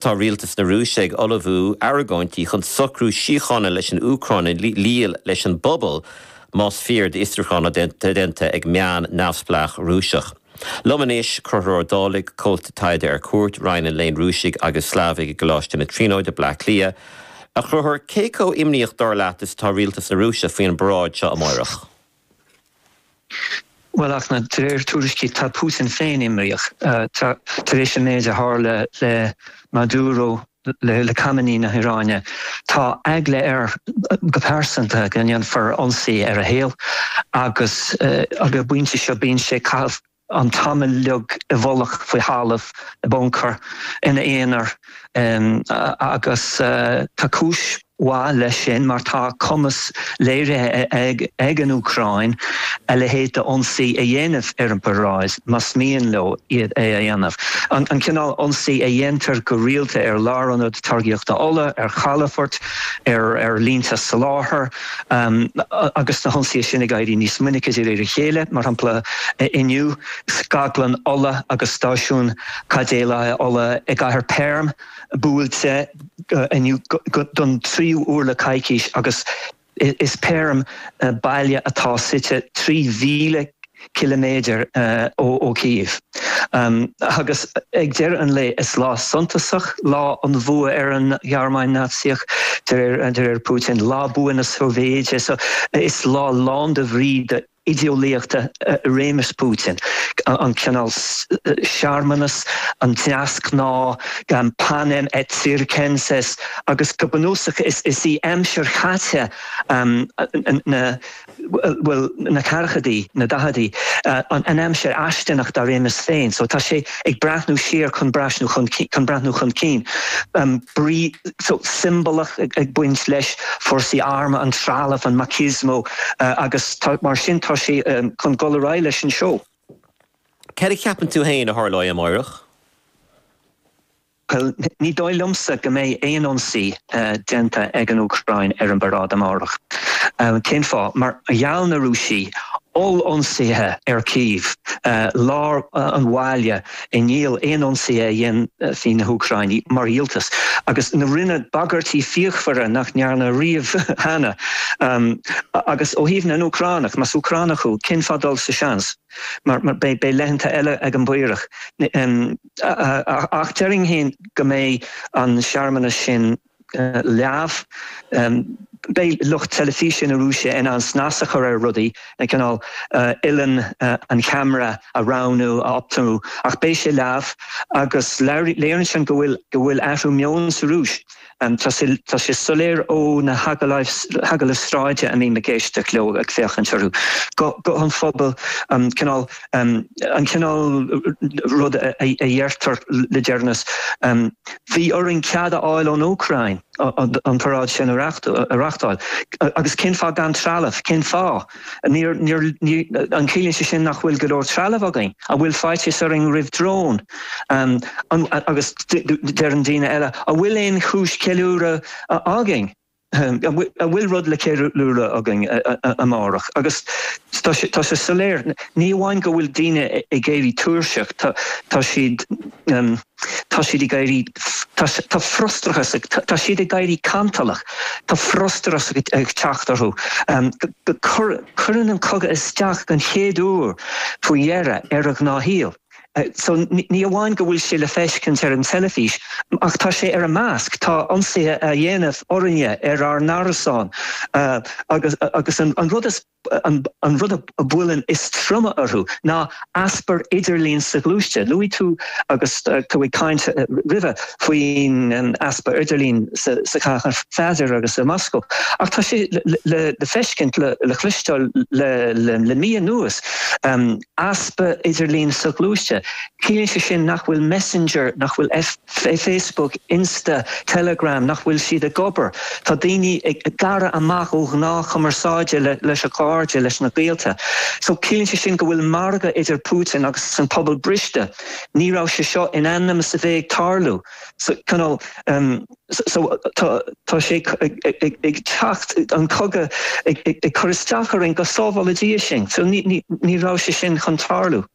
Tá Rialtas na Rúise ag ullmhú argóintí chun socrú síochána leis an Úcráin a dhíol leis an bpobal, más fíor d'fhiosrúchán atá déanta ag meán neamhspleách Rúiseach. Liom anois, Conchúr Ó Dálaigh, Comhalta Taighde ar Cuairt Roinn an Léinn Rúisigh agus Slavaigh i gColáiste na Tríonóide, Bleá Cliath. A Chonchúir, cé chomh imníoch, dar leat, is atá Rialtas na Rúise faoi an bparáid seo amáireach? Bhuel, ach de réir tuairiscí tá Putin féin imníoch, tar éis an méid a tharla le Maduro, le Khamenei na hIaráine. Tá eagla air go pearsanta go ndéanfar ionsaí ar a shaol agus ag an bpointe seo bíonn sé ag caitheamh. an t-am uilig i bhfolach faoi thalamh i buncar ina aonar agus tá cúis mhaith leis sin mar tá cumas léirithe ag an Úcráin a leithéid d'ionsaí a dhéanamh ar an bparáid más mian leo é a dhéanamh, an cineál ionsaí a dhéantar go rialta ar lárionad táirgíochta ola, ar chalafoirt, ar línte soláthair. agus na hionsaithe sin ag éirí níos minice de réir a chéile, mar shampla Inniu, scaglann ola agus stáisiún caidéalaithe ola i gcathair Perm buailte inniu don tríú huair le coicís agus is Perm baile atá suite trí mhíle ciliméadair ó Kyiv. Agus ag deireadh an lae, is lá suntasach lá an bhua ar an Ghearmáin Naitsíoch, de réir Putin, lá bua na Sóivéide. So, is lá lán de bhrí do idé-eolaíochta réimeas Putin, an cineál searmanas, an deasghnáth, panem et circenses, agus go bunúsach is í aimsir chaite na. bhuel na ceathrachaidí, na daicheadaí, an aimsir fháistineach dá réimeas féin so tá sé ag breathnú siar chun breathnú chun chun breathnú chun cinn brí so siombalach ag baint leis fórsaí armtha an trealamh an machismo agus mar sin tá sé chun dul ar aghaidh leis an seó. Cad a cheapann tú féin a tharlóidh amáireach? Bhuel, ní dóigh liomsa go mbeidh aon ionsaí déanta ag an Úcráin ar an bparáid amárach. Cén fáth? Mar gheall na Rúisigh, oll-ionsaithe ar Kyiv, lár an bhaile, i ndiaidh aon ionsaithe a dhéanfaidh na hÚcráinigh mar dhíoltas, agus na rinneadh bagairtí fíochmhara nach ndearnadh riamh cheana. Agus ó thaobh na nÚcránach, más Úcránach thú, cén fáth dul sa seans? Mar beidh laethanta eile ag an bPaorach. Ach déarfainn féin go mbeidh an searmanas sin leamh. Beidh lucht teilifíse na Rúise in ann snas a chur ar rudaí, cineál uilleann an cheamara a roghnú, a optamú, ach beidh sé leamh agus léiríonn sin go bhfuil athrú meoin sa Rúis. Tá sé soiléir ó na hagallaimh sráide a mbím ag éisteacht leo, ag féachaint orthu, guth an phobail, an cineál rud a dheirtear le deireanas, 'Bhí orainn cead a fháil ón Úcráin an paráid sin a reachtáil', agus 'Cén fáth gan trealamh, cén fáth? An gciallaíonn sé sin nach bhfuil go leor trealaimh againn? An bhfuil faitíos orainn roimh dróin? Agus deireann daoine eile, an bhfuil aon chúis cheiliúradh againn? An bhfuil rud le ceiliúradh againn amárach? Agus tá sé soiléir, ní amháin go bhfuil daoine ag éirí tuirseach, tá siad. Tá siad ag éirí, tá frustrachas, tá siad ag éirí cantalach, tá frustrachas ag teacht orthu. Cuireann an cogadh isteach don chéad uair faoi dheireadh ar a ngnáthshaol. So ní amháin go bhfuil sé le feiscint ar an teilifís ach tá sé ar a measc, tá ionsaithe á dhéanamh orainne ar ár n-árasáin agus an rud is. An rud a bhuaileann is troime orthu ná easpa idirlín soghluaiste. Luaigh tú agus tú ag caint roimhe faoin easpa idirlín i gCathair Pheadair agus i Moscó ach tá sé le feiscint, le cloisteáil le mí anuas, easpa idirlín soghluaiste. Ciallaíonn sé sin nach bhfuil Messenger, nach bhfuil FB, Facebook, Insta, Telegram, nach bhfuil siad ag obair. Tá daoine gearrtha amach ó ghnáthchumarsáid leis a gcairde leis na gaolta. So ciallaíonn sé sin go bhfuil margadh idir Putin agus an pobal briste. Ní raibh sé seo in ainm is a bheith ag tarlú. So you know so tá sé ag teacht an cogadh ag cur isteach orainn go sábhála Dia sinn. So ní raibh sé sin chun tarlú.